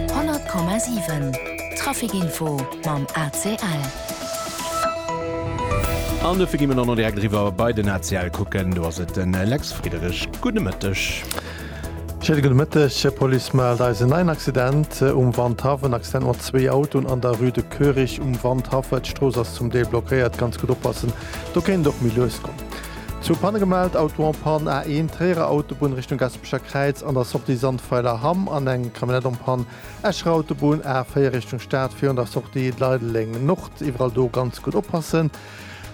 100 Komma 7 Trafic Info mam ACL. An dofir gi mer dann och direkt eriwwer bei den ACL kucken. Do ass et den Lex Friederich. Gudde Mëtteg. Schéine gudde Mëtteg. D'Police mellt eis en neien Accident um Wandhaff. En Accident mat zwee Autoen an der Rue de Koerich um Wandhaff. D'Strooss ass zum Deel blockéiert. Ganz gutt oppassen, do kéint et och méi lues goen. Zwou Panne gemellt, Auto en panne, A1 Tréierer Autobunn Richtung Gaspésie. D'Echer Kräiz an der Sortie Sandweiler Hamm an eng Camionnette en Panne. Escher Autobunn A4 Richtung Stad virun der Sortie Leideleng Nord. Iwwerall do ganz gutt oppassen,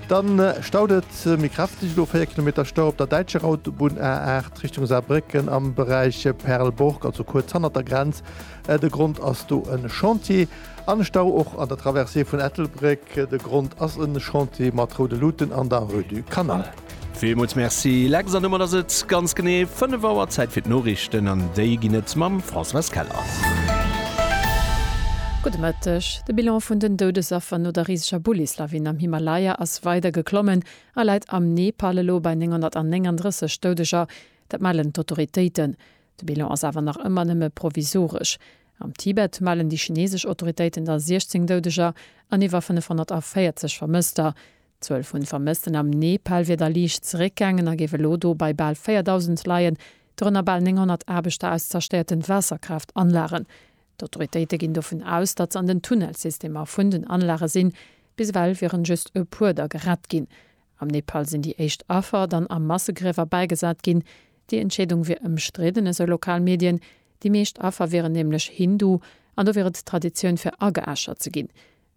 dann staut et méi kräfteg. Elo 4 Kilometer Stau op der däitscher Autobunn A8 Richtung Saarbrécken am Beräich Perlborg, also kuerz hannert der Grenz. De Grond ass do e Chantier. An Stau och an der Traversée vun Ettelbréck. De Grond ass e Chantier mat roude Luuten an der Rue du Canal. Villmools Merci Lex an domat ass et ganz genee 5 Auer, Zäit fir d'Noriichten an déi ginn et mam Françoise Keller. Gudde Mëtteg. De Bilan vun den Doudesaffer no der riseger Bullislawin am Himalaya ass weider geklommen a läit am Nepal elo bei 939 Doudeger. Dat mellen d'Autoritéiten. De Bilan ass awer nach ëmmer nëmme provisoresch. Am Tibet mellen déi chinesesch Autoritéiten da 16 Doudeger an iwwer 540 Vermësster. D'Zuel vun Vermëssten am Nepal wier da liicht zeréckgaangen a géif elo do bei bal 4.000 leien, dorënner bal 900 Aarbechter aus zerstéierten Waasserkraaft-Anlagen. D'Autoritéite ginn dovun aus, datt se an den Tunnelsystemer vun den Anlage sinn. Bis ewell wieren just e puer da gerett ginn. Am Nepal sinn déi éischt Affer dann a Massegriewer bäigesat ginn. Déi Entscheedung wier ëmstridden, esou lokal Medien. Déi meescht Affer wieren nämlech Hindu an do wier et Traditioun fir ageäschert ze ginn.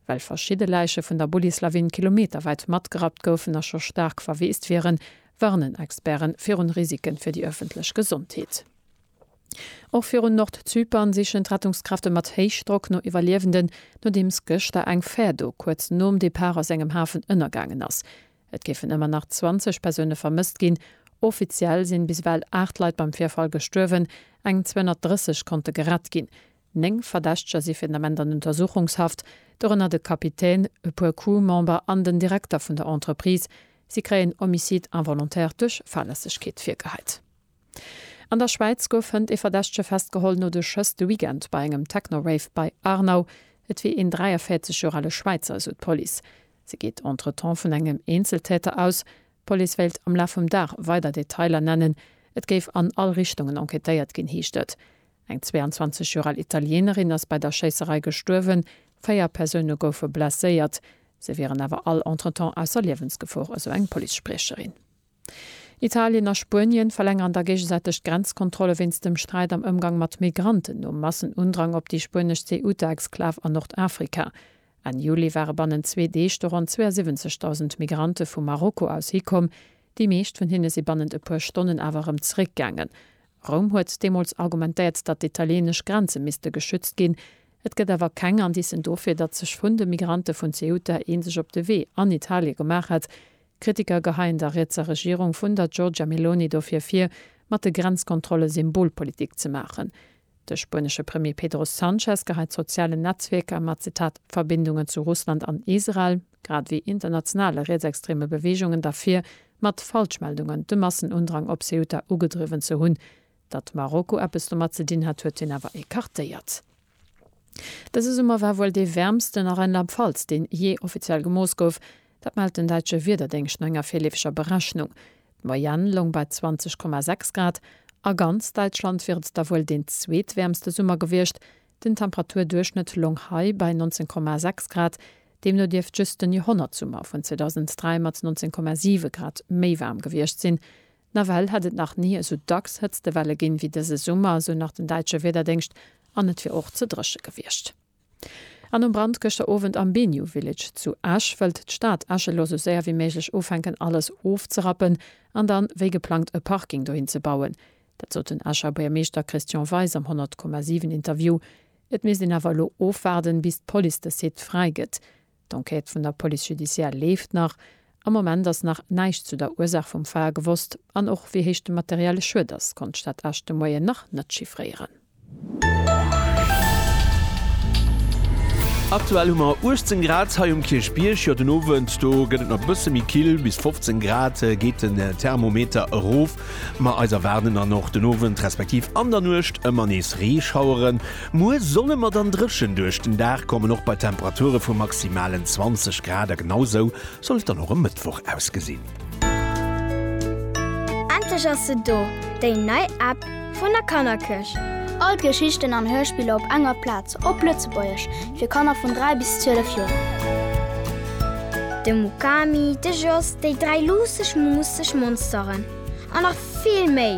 well verschidde Läiche vun der Bullislawin kilometerwäit matgerappt goufen a scho staark verweest wieren, warnen Experte virun Risike fir déi ëffentlech Gesondheet. Och virun Nordzypern sichen d'Rettungskräfte mat Héichdrock no Iwwerliewenden, nodeems gëschter eng Fär do kuerz nom Depart aus engem Hafen ënnergaangen ass. Et géifen ëmmer nach 20 Persoune vermësst ginn. Offiziell sinn bis ewell 8 Leit beim Virfall gestuerwen, eng 230 konnte gerett ginn. Néng Verdächteger si fir den Ament an Untersuchungshaft, dorënner de Kapitän, e puer Crew-Member an den Direkter vun der Entreprise. Si kréien Homicide involontaire duerch Fahrlässegkeet virgeheit. An der Schwäiz gouf hënt ee Verdächtege festgeholl no de Schëss de Weekend bei engem Techno-Rave bei Aarnau. Et wier een 43 Joer ale Schwäizer, esou d'Police. Se geet entretemps vun engem Eenzeltäter aus. D'Police wéilt am Laf vum Dag weider Detailer nennen. Et géif an all Richtungen enquêtéiert ginn, heescht et. Eng 22 Joer al Italieenerin ass bei der Schéisserei gestuerwen, véier Persoune goufe blesséiert. Se wieren awer all entretemps ausser Liewensgefor, esou eng Police-Spriecherin. Italien a Spuenien verlängeren da géigesäiteg d'Grenzkontrolle wéinst dem Sträit am Ëmgang mat Migranten nom Massenundrang op déi spuenesch Ceuta-Exklav a Nordafrika. Enn Juli ware bannen zwee Deeg do ronn 72.000 Migrante vu Marokko aus hikomm. Déi meescht vun hinne si bannent e puer Stonnen awer erëm zeréckgaangen, Roum huet deemools argumentéiert, datt d'italieenesch Grenze misste geschützt ginn. Et gëtt awer keng Indicen dofir, datt sech vun de Migrante vun Ceuta ee sech op de Wee an Italie gemaach hätt. Kritiker geheien der rietser Regierung vun der Giorgia Meloni dofir vir, mat de Grenzkontrolle Symbolpolitik ze maachen. De spuenesche Premier Pedro Sanchez geheit sozialen Netzwierker mat, Zitat, Verbindungen zu Russland an Israel. grad wéi internationale rietsextreme Beweegungen derfir, mat Falschmeldungen de Massenundrang op Ceuta ugedriwwen ze hunn. Datt Marokko eppes domat ze dinn hat, huet hien awer ecartéiert. Dëse Summer war wuel dee wäermsten a Rheinland-Pfalz, deen jee offiziell gemooss gouf. Dat mellt den däitsche Wiederdéngscht no enger virleefeger Berechnung. D'Moyenne loung bei 20,6 Grad. A ganz Däitschland wier et da wuel deen zweetwäermste Summer gewiescht, Den Temperaturduerchschnëtt long hei bei 19,6 Grad, deemno dierft just den Joerhonnertsummer vun 2003 mat 19,7 Grad méi waarm gewiescht sinn. Nawell hätt et nach ni esou dacks Hëtztewelle ginn, wéi dëse Summer, esou nach den däitsche Wiederdéngscht, an et wier och ze dréche gewiescht. An nom Brand gëschter Owend am Biniou Village zu Esch, wëllt d'Stad Esch elo sou séier wéi méiglech ufänken alles ofzerappen an dann, wéi geplangt, e Parking dohin ze bauen. Dat sot den Escher Buergermeeschter Christian Weis am 100,7 Interview. Et misst een awer elo ofwaarden, bis d'Police de Site fräi gëtt. D'Enquête vun der Police judiciare leeft nach. Am Moment ass nach näischt zu der Ursaach vum Feier gewosst. An och wéi héich de materielle Schued ass, konnt d'Stad Esch de Moien nach net chiffréieren. Aktuell hu mer 18 Grad hei um Kierchbierg. Jo, den Owend do gëtt et nach e bësse méi kill, bis 15 Grad geet den Thermometer erof. Ma eis erwaarden dann och den Owend respektiv an der Nuecht ëmmer nees Reeschaueren. Muer solle mer dann dréchen duerch den Dag kommen, och bei Temperature vu maximalen 20 Grad. A genau esou soll et dann och e Mëttwoch ausgesinn. Endlech ass se do, déi nei App vun der Kannerkëscht! All d'Geschichten an Hörspiller op enger Plaz, op Lëtzebuergesch, fir Kanner vun 3 bis 12 Joer. De Mukami, de Jos, déi dräi luusseg, muusseg Monsteren an nach vill méi!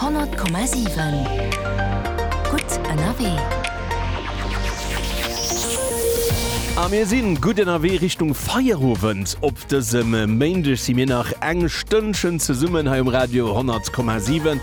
Honnert Komma siwen, gutt ënnerwee! A mir si gutt ënnerwee Richtung Feierowend. Op dësem Méindeg si mir nach eng Stënnchen zesummen hei um Radio 100 Komma 7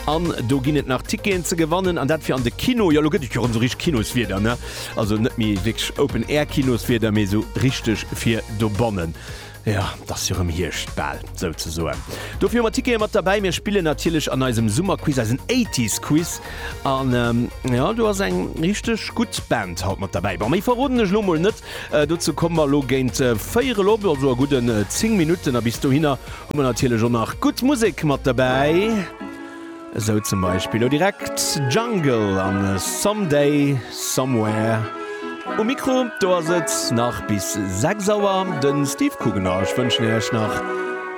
an do ginn et nach Ticketen ze gewannen an dat fir an de Kino. Jo, lo gëtt et jo rëm sou richteg Kinoswieder, ne? Also net méi wierklech Open-Air-Kinoswieder, mee sou richteg fir dobannen. Jo, et ass jo rëm Hierscht, bal, souzesoen. Dofir hu mer Tickete mat derbäi. Mir spillen natierlech an eisem Summerquiz eisen Eighties-Quiz. An, jo, do ass eng richteg gutt Band haut mat derbäi. Bon, méi verroden ech elo mol net. Dozou komme mer elo géint véier erop, also a gudden zéng Minutten. A bis dohinner hu mer natierlech och nach gutt Musek mat derbäi. Esou zum Beispill lo direkt Jungle an Someday Somewhere. Um Mikro do ass et nach bis 6 Auer de Steve Coogan a ech wënschen iech nach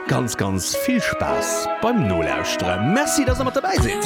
ganz ganz vill Spaass beim Nolauschteren. Merci dass der mat dobäi sidd!